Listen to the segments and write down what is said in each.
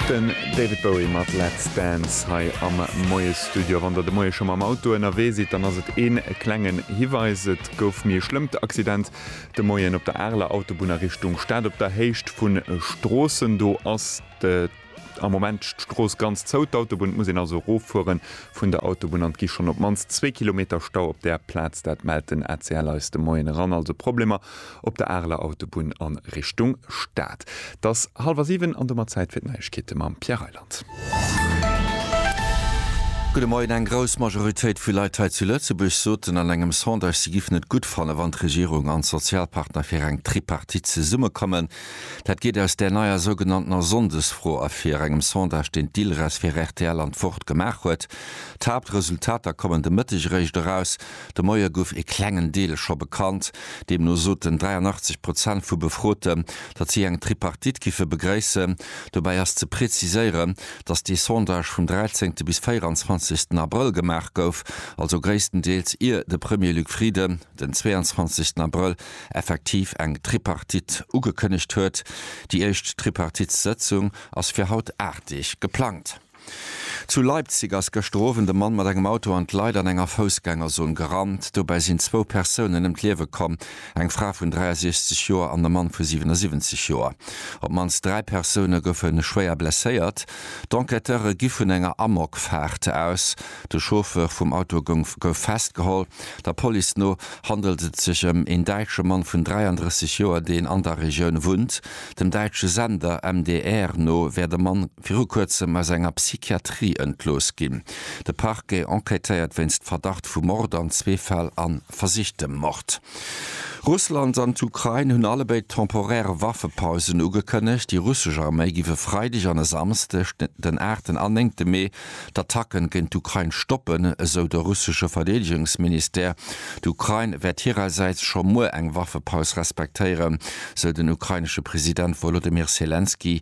Den David Bowie mat Let's Dance hei am Moiesstudio. Wann der de Moie scho mam Auto ënnerwee sidd, dann ass et ee klengen Hiweis, Et gouf méi e schlëmmt Accident de Moien op der Areler Autobunn a Richtung Stad. Op der Héicht vu Stroossen do ass am Moment d'Strooss ganz zou, d'Autobunn. Et muss een also eroffuere vun der Autobunn an et gi schonn op d'mannst zwee Kilometer Stau op där Plaz. Dat mellt den ACL eis de Moien eran. Also Problemer op der Areler Autobunn a Richtung Stad. Et ass hallwer siwen an domat Zäit fir d'Neiegkeete mam Pierre Reyland. Gudde Moien, Eng grouss Majoritéit vu Leit hei zu Lëtzebuerg soten an engem Sondage, si géifen et gutt fannen, wann d'Regierung an d'Sozialpartner fir eng Tripartite zesummekommen. Dat geet aus där neier sougenanntener Sonndesfro ervir, engem Sondage, deen d'ILRES fir rtl an d'Wort gemaach huet. D'Haaptresultater kommen de Mëtteg eréischt eraus. De Moie gouf ee klengen Deel scho bekannt. Deemno soten 83 Prozent vu Befroten, datt si eng Tripartite giffe begréissen. Dobäi ass ze preziséieren, datt dee Sondage vum 13. bis 24. Abrëll gemaach gouf, also gréisstendeels ier de Premier Luc Frieden den 22. Abrëll effektiv eng Tripartite ugekënnegt huet. Déi éischt Tripartitssëtzung ass fir haut 8 Deeg geplangt. Zu Leipzig ass gëschter Owend e Mann mat engem Auto an d'Leit an enger Foussgängerzon gerannt. Dobäi sinn zwou Persounen ëm d'Liewe komm, eng Fra vun 63 Joer an e Mann vu 77 Joer. Op d'mannst dräi Persoune goufe schwéier blesséiert. D'Enquêteure gi vun enger Amokfaart aus. De Chauffeur vum Auto gouf festgeholl. Der Police no handelt et sech ëm een däitsche Mann vun 33 Joer, deen an der Regioun wunnt. Dem däitsche Sender MDR no wär de Mann. viru kuerzem aus enger Psychiatrie entlooss ginn. De Parquet enquêtéiert wéinst Verdacht vu Mord an zwee Fäll a versichtem Mord. Russland an d'Ukrain hunn allebéid temporär Waffepausen ugekënnegt. Déi russesch Arméi giff e Freideg an e Samsdeg, den aachten an néngte Mee, d'Attacken géint d'Ukrain stoppen, esou de russesche Verdeedegungsministère. D'Ukrain wäert hirersäits scho muer eng Waffepaus respektéieren, sou den ukrainesche President Wolodymyr Selenskyj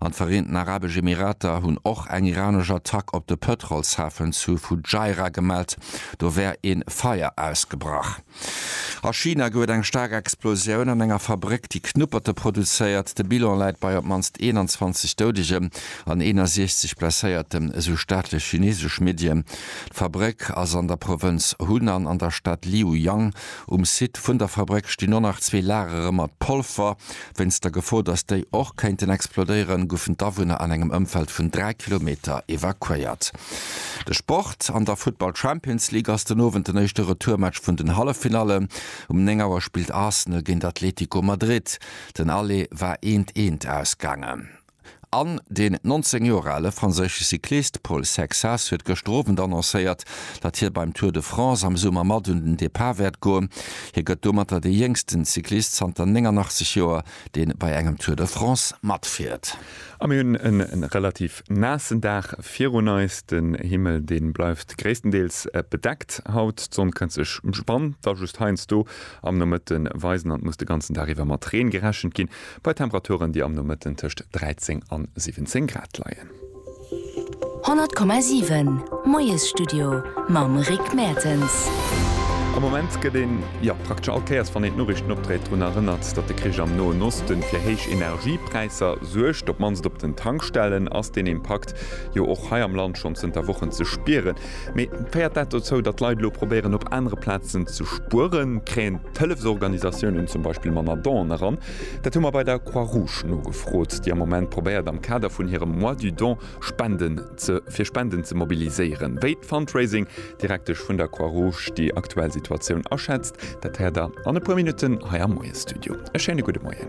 an d'Vereenten Arabesch Emirater hunn och eng iranesch Attack op de Pëtrolshafen zu Fujairah gemellt, do wär ee Feier ausgebrach. A China gouf et eng staark Explosioun an enger Fabréck, déi Knupperte produzéiert. De Bilan läit bei op d'mannst 21 Doudegen an 61 Blesséierten, esou staatlech chinesesch Medien. D'Fabréck ass an der Provënz Hunan an der Stad Liuyang. Um Site vun der Fabréck stinn och nach zwee Lagere mat Polver, Wéinst der Gefor, datt déi och kéinten explodéieren, goufen d'Awunner an engem Ëmfeld vun 3 Kilometer evakuéiert. De Sport, An der Futtball Champions League ass den Owend den éischte Retourmatch vun den Halleffinallen. Um 9 Auer spillt Arsenal géint Atlético Madrid. Den Aller war eent, eent ausgaangen. An den 19 Joer ale franséische Cyclist Paul Sexas huet gëschter Owend annoncéiert, datt hie beim Tour de France am Summer mat un den Depart wäert goen. Hie gëtt domatter dee jéngsten Cyclist zanter 89 Joer, dee bei engem Tour de France matfiert. A mir hunn en relativ naassen Dag virun eis. Den Himmel dee bleift gréisstendeels bedeckt haut. D'Sonn kënnt sech, wann da just heiansdo am Nomëtte weisen. An et muss de ganzen Dag iwwer mat Reen gerechent ginn. Bei Temperaturen, déi am Nomëtten tëscht 13 an 17 Grad leien. 100,7 Moiesstudio mam Rick Mertens. Am Moment gëtt een, jo, praktesch all Kéiers, wann een d'Noriichten opdréit, drun erënnert, datt de Krich am Noen Osten fir héich Energiepräisser suergt. Op d'mannst op den Tankstellen ass deen Impakt jo och hei am Land schonn zënter Wochen ze spieren. Mee féiert dat dozou, datt d'Leit elo probéieren, op anere Plazen ze spueren? Kréien d'Hëllefsorganisatiounen zum Beispill manner Donen eran? Dat hu mer bei der Croix-Rouge nogefrot, déi am Moment probéiert, am Kader vun hirem Mois du don Spenden ze fir Spenden ze mobiliséieren. Wéi d'Fundraising Direktesch vun der Croix-Rouge déi aktuell Situatioun aschätzt, dat héiert der an e puer Minutten hei am Moiesstudio. E schéine gudde Moien.